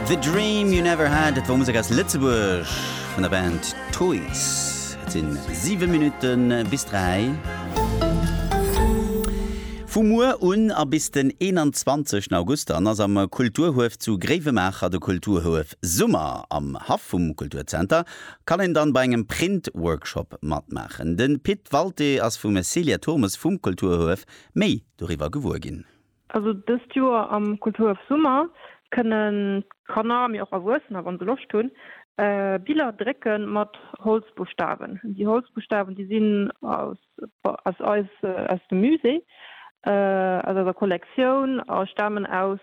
The Dream You Never Had, dat wor Musek aus Lëtzebuerg vun der Band Toys. Et sinn 7 Minutten bis 3. Vu muer un a bis den 21 August dann ass am Kulturhuef zu Gréiwemaacher de Kulturhuef Summer. Am Haff vum Kulturzenter kann een dann bei engem Print-Workshop matmaachen. De Pit Walté ass vum Célia Thurmes vum Kulturhuef méi doriwwer gewuer ginn. Also dëst Joer am Kulturhaff Summer kënnen d'Kanner, mee och Erwuessener, wann se Loscht hunn, Biller drécke mat Holzbuschtawen. Déi Holzbuschtawen, déi sinn aus aus eis aus dem Musée, aus eiser Kollektioun a stamen aus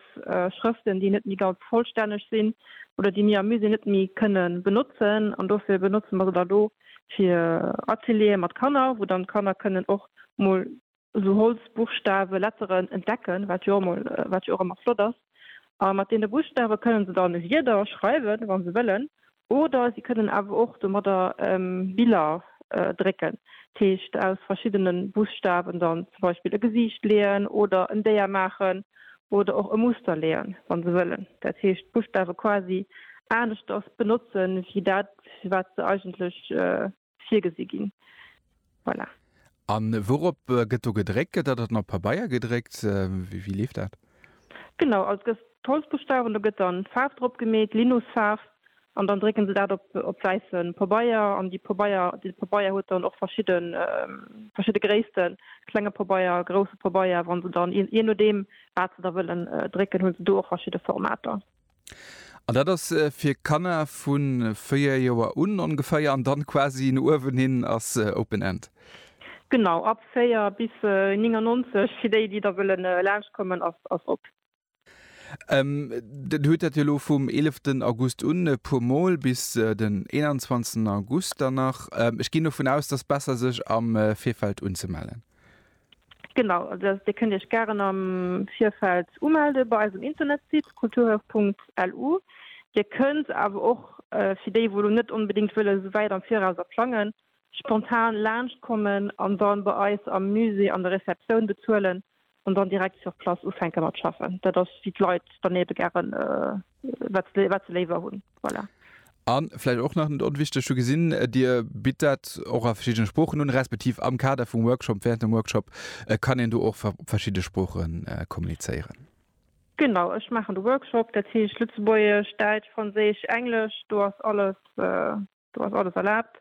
Schrëften, déi net méi ganz vollstänneg sinn oder déi mir am Musée net méi kënne benotzen. An dofir benotze mer se dann elo fir Ateliere mat Kanner, wou dann d'Kanner kënnen och mol esou Holz, Buchstawen, Letteren entdecken, wat jo emol, wat jo och emmer flott ass. A mat deene Buchstawen kënnen se dann Wierder schreiwen, wann se wëllen, oder si kënnen awer och domadder Biller drécken, dat heescht aus verschiddene Buchstawen dann zum Beispill e Gesiicht leeën oder en Déier maachen oder och e Muster leeën, wann se wëllen, dat heescht d'Buchstawen quasi aneschters benotzen, wéi dat wat se eigentlech. virgesi ginn. Voilà. A wourop gëtt do gedréckt? Gëtt dat dann op Pabeier gedréckt? Wéi leeft dat? Genau, also gëtt d'Holzbuschtawen, do gëtt dann d'Faarf drop gemeet, Linusfaarf, an dann drécken se dat op wäisse Pabeier. An déi Pabeier, dee Pabeier huet dann och verschidde Gréissten, klenge Pabeier, grousse Pabeier. Wann se dann, jee nodeem wat se da wëllen drécken, hu se do och verschidde Formater. An dat ass fir Kanner vu 4 Joer un ongeféier an dann quasi no uewen hin ass open end? Genau, ab 4 bis 99, fir déi déi da wëllen laanscht kommen ass op. Der hutt dat jo elo vum 11 August un e puer mol bis den 21 August dann nach. Ech ginn dovun aus, et ass besser sech am Virfeld unzemellen. Genau, Dir kënnt Iech gären am Virfeld umelde bei eisem Internetsite kulturhaus.lu. Dir kënnt awer och, fir déi wou lo net onbedéngt wëlle sou wäit am Viraus a plangen, spontan laanscht kommen an dann bei eis am Musée an der Receptioun bezuelen an dann direkt sur place ufänke mat schaffen. Dat ass wéi d'Leit dann ebe gären. wat ze léiwer hunn. Voilà. An vläicht och nach net onwichteg, hu gesinn, äh, Dir bitt dat och a verschiddene Sproochen un, respektiv am Kader vum Workshop, während dem Workshop äh, kann een do och op verschidde Sproochen äh, kommunizéieren. Genau, ech maachen de Workshop, dat heescht Lëtzebuergesch, Däitsch, Franséisch, Englesch, do ass alles äh, Do ass alles erlaabt.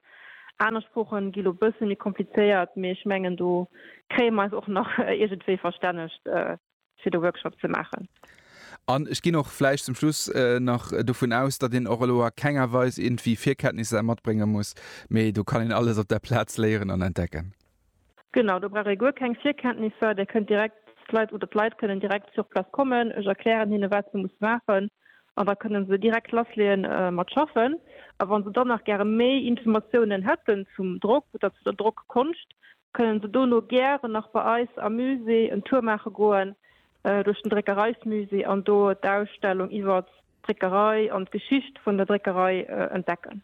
Aner Sproochen gi lo bësse méi komplizéiert, mee ech mengen do kréie mer eis och nach iergendwéi verstännegt fir de Workshop ze maachen. An ech ginn och vläicht zum Schluss nach dovun aus, datt een och elo a kenger Weis iergendwéi Virkenntnisser matbrénge muss, mee do kann een alles op der Plaz léieren an entdecken. Genau, do brauch ee guer keng Virkenntnisser, där kënnt direkt, d'Leit oder d'Leit kënnen direkt sur place kommen, ech erklären hinne wat se musse maachen an da kënne se direkt lassleeë mat schaffen. A wa se dann nach gäre méi Informatiounen hätten zum Drock oder zu der Drockkonscht, kënne se dono gären nach bei eis am Musée en Tour maache goen duerch den Dréckereismusée an do d'Ausstellung iwwert d'Dréckerei an d'Geschicht vun der Dréckerei entdecken.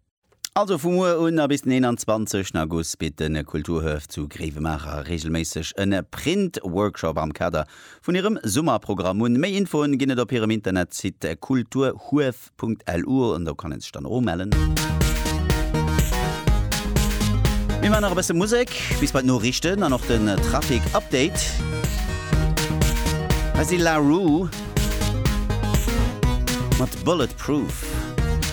Also vu muer un a bis den 21 August bitt de Kulturhuef zu Gréiwemaacher reegelméisseg e Print-Workshop am Kader vun hirem Summerprogramm un. Méi Infoen ginn et op hirem Internetsite kulturhuef.lu an do kann ee sech dann och umellen. Mir man nach e bësse Musek bis bei d'Noriichten an och den Trafic Update. Hei si La Roux mat Bulletproof.